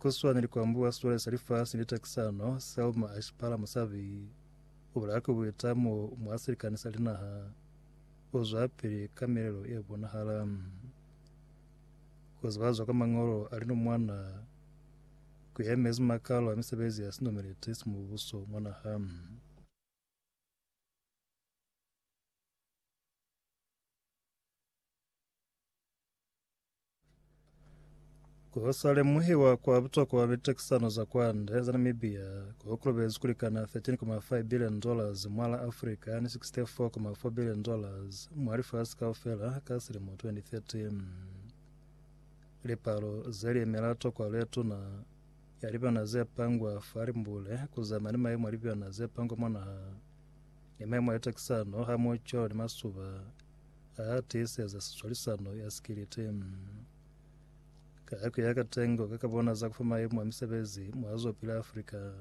Ku swana ni ku ambuha siwale sa lifasi ni takisano, Selma a shipala musabi o bulaya ku buita mo mwa silikani sa linaha o zwapili ka milelo ye bonahala. Ku zibazwa kwa Mañolo a linomwana ku yemezi makalo a misebezi ya sinumeleti sa Mubuso mwa naha. Ko sa lemuhiwa kwa butokwa mitekisano za kwande za Namibia ko kolobezi kulikana 13.5 billion dollars mwa la Africa ni 64.4 billion dollars mwa lifasi kaufela ka silimo 2013. Lipalo ze liemela tokwa letuna ya libyana ze pangwa fa limbule kuzama ni maimo a libyana ze pangwa mwa naha ni maimo a litekisano hamoho cwalo ni masuba A tiiseza sicwalisano ya sikiliti. Ka yako ya katengo ka kabona za kufa maimo a misebezi mwa zopila Afrika,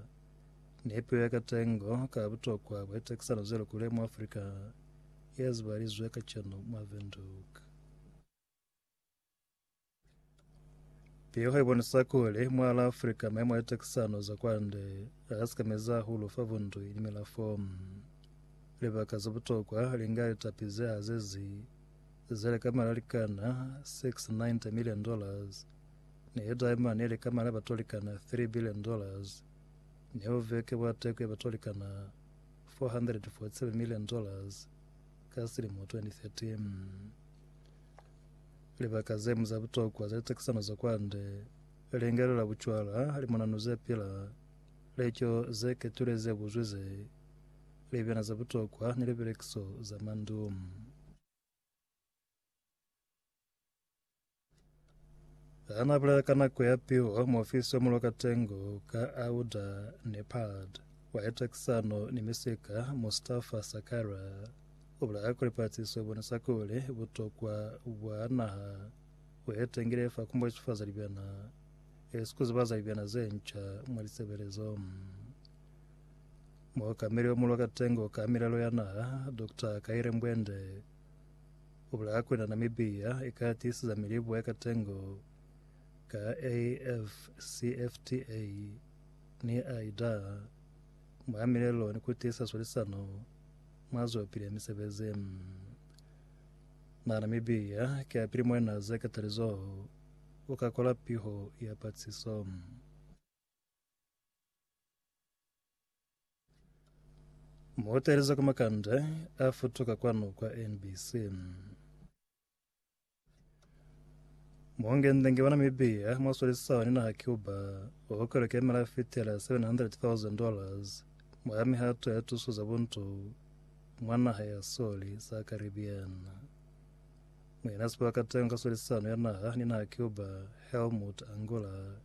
nepeo ya katengo ka butokwa bwa litekisano ze lukule mwa Afrika ye zibalizwe kacenu mwa Windhoek. Piho ibonisa kuli mwa la Afrika maemo a tekisano za kwande agasekameza hahulu fa bundu ili milafo. Libaka za butokwa linga litapi ze hazezi zeli ka malalikana 690 million dollars ni diamond ili ka mala batolikana 3 billion dollars ni uveke bwa teko ya batolikana 447 million dollars ka silimo 2013. Libaka ze ñwi za butokwa za litekisano za kwande, lingelelo la bucwala, limonano ze pila, lico ze ketulile ze buzwi ze libena za butokwa, ni libelekiso za mandu. Hana bulela ka nako ya piho muofisi wa mulo katengo ka auda nepad wa litekisano ni misika mustafa sakara U bulaya kuli pahatiso bona sa kuli butokwa bwa naha bu etengile fa ku mbochifaza libyana e si ku zibaza libyana ze nca mwa lisebelezo. Mookameli wa Mulwa Katengo ka Milelo ya Naha, Dr. Kaire Mbwende, u bulaya kuli na Namibia i ka tiisiza milibo ya katengo ka AFCFTA ni AIDA mwa milelo ni ku tiisa swalisano Mwa zwapili ya misebezi ye Namibia ki yapili mwena Seketali Zhou u ka kola piho ya patiso. Muteelezi wa kwa Makande a futuka kwanu kwa NBC. Muhongenze nge Banamibia mwaswalisisana ni naha Cuba okwelo kemela fitela 700,000 dollars mwa mihato ya tuso za buntu mwa naha ya Soli sa Caribbean. Mwina sibuwa katengo ka swalisisano ya naha ni naha Cuba Helmut Angola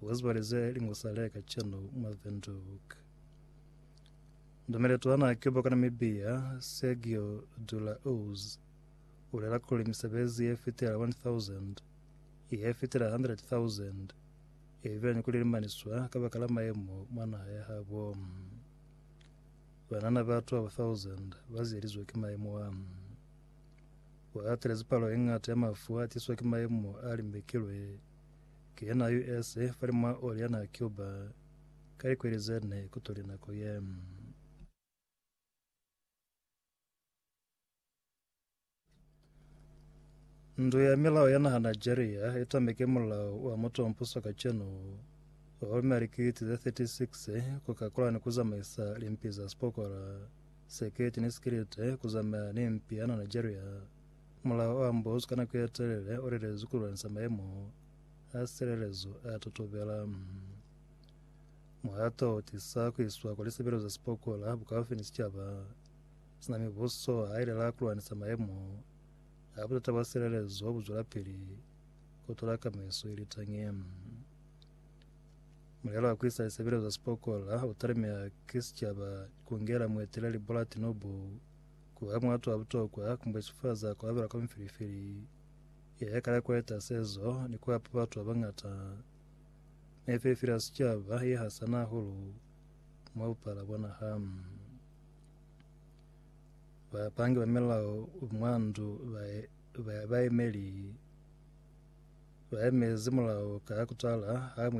wazibalize lingusale kacheno mwa Windhoek. Ndomeleto wa naha Cuba kwa Namibia Sergio Dulaoz u lela kuli misebezi ye fitela 1,000, ye fitela 100,000 i bile ni ku lilimaniswa kabakala mayemo mwa naha ya habo. Banana batu abo 1,000 ba ziyelizwe ki mayemo a. U atelezi palo ye ñata ya mafu a tiswa ki mayemo a limbekilwe ki ye na US fali mwa oli ya naha Cuba ka likweli ze ne kutuli nako ye. Ndu ya milao ya naha Nigeria itameke mulao wa mutompuso kacenu gomme likiti ze 36 ku kakola ni ku zamaisa limpi za sipokora, seketi ni sikilite ku zamaya ni mpi ya na Nigeria. Mulao o ambozu ka nako ye telele o lelezwi ku lwanisa maemo a silelezo a totobela. Muhato o tisa ku iswa kwa lisebelo za sipokora bukaufi ni sicaba. Sina mibuso ha i lela ku lwanisa maemo a butata bwa silelezo bu zwelapili ku tola kamaiso ye litañi. Mulelo wa ku isa lisebelezo za sipokola u talemeha ki sicaba ku ngela mueteleli Bola Tinubu ku ba muatu wa butokwa ku mbwechifaza ku abela kwa mifilifili ye ya kala ku eta sezo ni ku hapa batu ba bangata mifilifili ya sicaba ye hasana hahulu mwa bupala bwa naha. Bapangi ba milao mwa ndu baemezi mulao ka kutala ha muemezi.